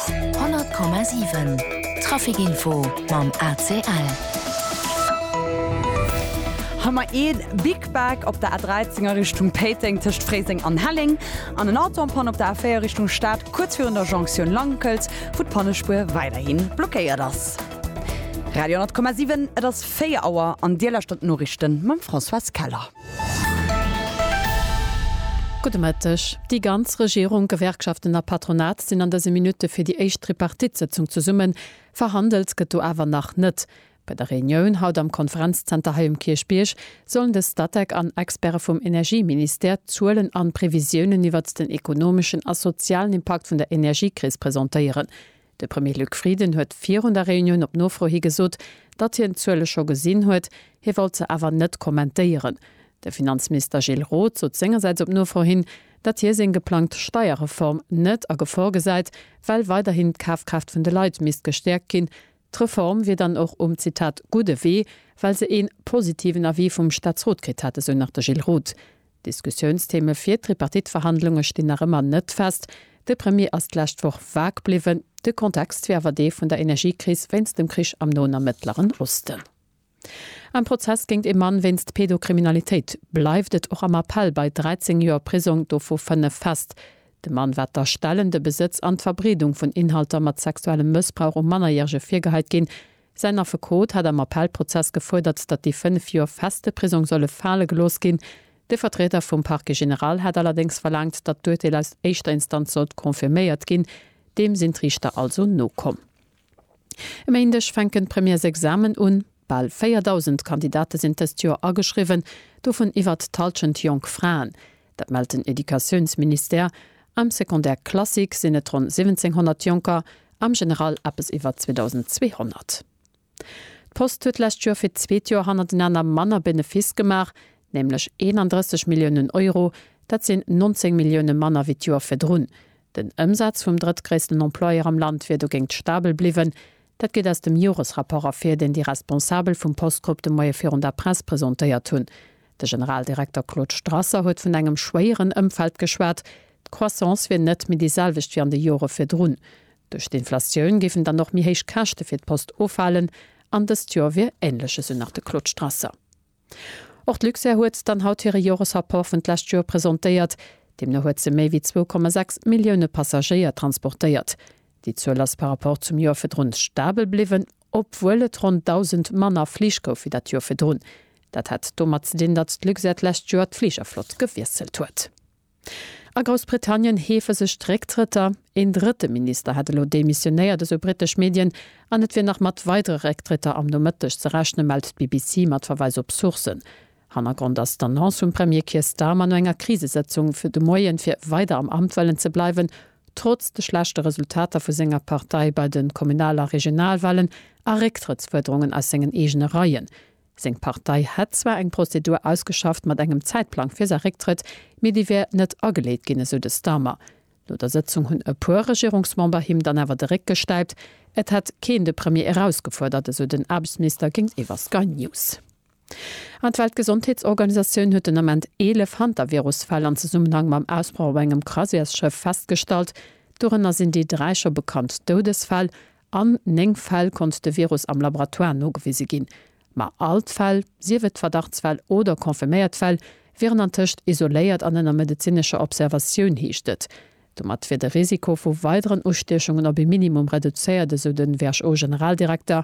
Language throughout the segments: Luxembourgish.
100,7 Trafic Info mam ACL. Hei mar ee Big Back op der A13 a Richtung Péiteng tëscht Fréiseng an Helleng an en Auto am Panne op der A4 Richtung Stad kuerz virun der Jonktioun Lankelt, wou d'Pannespuer weiderhi blockéiert ass. Radio 100,7 Et ass 4 Auer an Dir lauschtert d'Noriichte mam Françoise Keller. Gudde Mëtteg. Déi ganz Regierung, Gewerkschaften a Patronat sinn an dëse Minutte fir déi éischt Tripartite-Sëtzung zesummen. Verhandelt gëtt do awer nach net. Bei der Reunioun haut am Konferenzzenter hei um Kierchbierg sollen de Statec an Experte vum Energieministère d'Zuelen an Previsiounen iwwert den ekonomeschen a sozialen Impakt vun der Energiekris presentéieren. De Premier Luc Frieden huet virun der Reunioun op Nofro hi gesot, datt hien d'Zuele scho gesinn huet, hie wollt se awer net kommentéieren. De Finanzminister Gilles Roth sot sengersäits op Nofro hin, datt hie seng geplangt Steierreform net a Gefor gesäit, well weiderhin d'Kafkraaft vun de Leit misst gestäerkt ginn. D'Reform wier dann och um, Zitat, gudde Wee, well se ee positiven Avis vum Staatsrot kritt hätt, esou nach de Gilles Roth. Diskussiounstheme fir d'Tripartite-Verhandlunge stinn nach ëmmer net fest. De Premier ass d'lescht Woch vag bliwwen. De Kontext wier awer dee vun der Energiekris wéinst dem Krich am Noen a Mëttleren Osten. Am Prozess géint ee Mann wéinst Pedokriminalitéit bleift et och am Appell bei 13 Joer Prisong, dovu 5 fest. De Mann war d'Erstellen, de Besëtz an d'Verbreedung vun Inhalter mat sexuellem Mëssbrauch u Mannerjärege virgehait ginn. Säin Affekot hat am Appellprozess gefuerdert, datt déi fënnef Joer feste Prisong solle fale gelooss ginn. De Vertrieder vum Parquet général hat allerdéngs verlaangt, datt d'Urteel aus éischter Instanz sollt confirméiert ginn. Deem sinn d'Riichter also nokomm. E Méindeg fänken d'Premièresexamen un. Bal 4.000 Kandidate sinn dëst Joer ageschriwwen, dovun iwwert d'Hallschent jonk Fraen. Dat mellt den Educatiounsministère. Am Secondaire classique sinn et ronn 1700 Jonker, am General eppes iwwer 2.200. D'Post huet d'lescht Joer fir d'zweet Joer hannertenaner manner Benefiss gemaach, nämlech 31 Milliounen Euro. Dat sinn 19 Millioune manner wéi d'Joer virdrun. Den Ëmsaz vum drëttgréissten Employeur am Land wier dogéint stabel bliwwen. Dat geet aus dem Joresrapport ervir, deen déi Responsabel vum Postgrupp de Moie virun der Press presentéiert hunn. De Generaldirekter Claude Strasser huet vun engem schwéieren Ëmfeld geschwat. D'Croissance wier net méi déi selwecht wéi an de Jore virdrun. Duerch d'Inflatioun géifen dann och méi héich Käschte fir d'Post ufalen an dëst Jor wier änlech, esou nach de Claude Strasser. Och d'Luxair huet dann haut hire Joresrapport vun d'lescht Jor presentéiert. Deemno huet se méi wéi 2,6 Millioune Passagéier transportéiert. Déi Zuel ass par Rapport zum Jor virdrun stabel bliwwen. obwuel et ronn 1.000 manner Flich gouf wéi dat Joer virdrun. Dat hat domat ze dinn, datt d'Luxair d'lescht Joer d'Fligerflott gewiesselt huet. A Groussbritannien heefe sech d'Récktrëtter. Een drëtte Minister hätt elo demissionéiert, esou britesch Medien, an et wier nach mat weidere Récktrëtter am Nomëtteg ze rechnen, mellt d'BBC mat Verweis op Sourcen. Hannergrond ass d'Annonce vum Premier Keir Starmer no enger Krisesëtzung de Moien, fir weider am Amt wëllen ze bleiwen, Trotz de schlechte Resultater vu senger Partei bei de Kommunal a Regionalwahlen a Récktrëttsfuerderungen aus sengen eegene Reien, seng Partei hätt zwar eng Prozedur ausgeschafft mat engem Zäitplang fir säi Récktrëtt, mee déi wär net ageleet ginn, esou de Starmer. No der Sëtzung hunn e puer Regierungsmember him dann awer de Réck gestäipt. Et hätt keen de Premier erausgefuerdert, esou den Aarbechtsminister géintiwwer Sky News. An d'Weltgesondheetsorganisatioun huet den Ament 11 Hantavirus-Fäll an Zesummenhang mam Ausbroch op engem Croisièresschëff festgestallt. Dorënner sinn déi dräi scho bekannt Doudesfäll. An 9 Fäll konnt de Virus am Laboratoire nogewise ginn. Ma all d'Fäll, sief et Verdachtsfäll oder confirméiert Fäll, wieren antëscht isoléiert an ënner medezinescher Observatioun, heescht et. Domat wier de Risiko vu weideren Ustiechungen op ee Minimum reduzéiert, esou de WHO-Generaldirekter.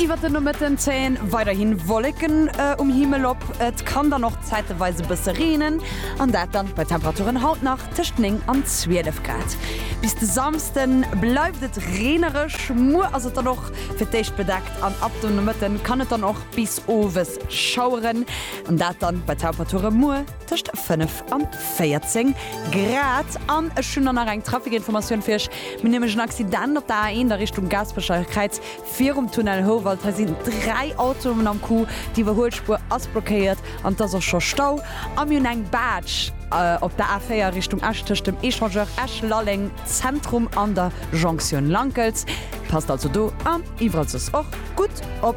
Iwwert de Nomëtten zéien weiderhin Wolleken um Himmel op, et kann dann och zäiteweis e bësse reenen, an dat dann bei Temperaturen haut nach tëscht 9 an 12 Grad. Bis de Samsde bleift et reenereg, muer ass et dann och fir d'éischt bedeckt an ab dem Nomëtte kann et dann och bis owes schaueren, an dat dann bei Temperature muer. Tëscht 5 an 14 Grad. An ech hunn dann nach eng Trafikinformatioun fir iech. Mir hunn nämlech en Accident op der A1 a Richtung Gaasperecher Kräiz virum Tunnel Houwald. Hei sinn dräi Autoen am Coup. D'Iwwerhuelspuer ass blockéiert an et ass och scho Stau. A mir hunn eng Baatsch op der A4 Richtung Esch tëscht dem Echangeur Esch-Lalleng Zentrum an der Jonktioun Lankels. Passt also do an iwwerall soss och gutt op.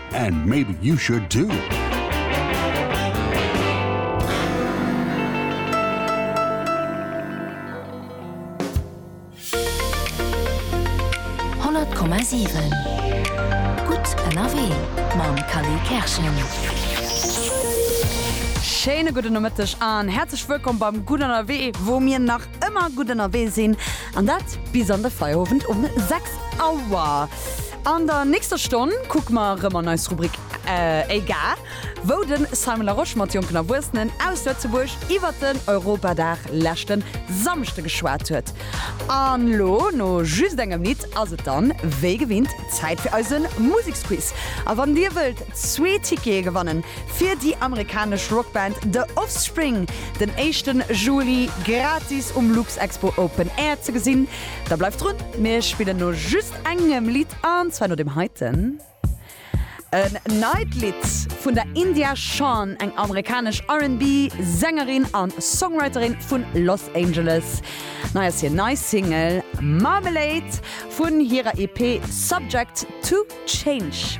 And maybe you should too! Schéine gudde Nomëtteg an häerzlech wëllkomm beim Gutt Ënnerwee, wou mir nach Ëmmer gutt ënnerwee sinn, an dat bis an de Feierowend um 6 Auer. An der nächster Stonn kucke mer erëm an eis Rubrik Éigar, wou de Simon Larosche mat jonken Erwuessenen aus Lëtzebuerg iwwert den Europadag leschte Samschde geschwat huet. An elo, no just engem Lidd, ass et dann wéi gewinnt Zäit fir eise Museksquiz. A wann dir wëllt zwee Tickete gewannen, fir déi amerikanesch Rockband The Offspring, den éischten Juli gratis um Luxexpo Open Air ze gesinn. Da bleift drun, mir spillen no just engem Lidd an zwar no dem heiten. En neit Lidd vun der India Shawn, eng amerikanesch R&B Sängerin an Songwriterin vun Los Angeles. Nei ass hir nei Single Marmalade vun hirer EP Subject to Change.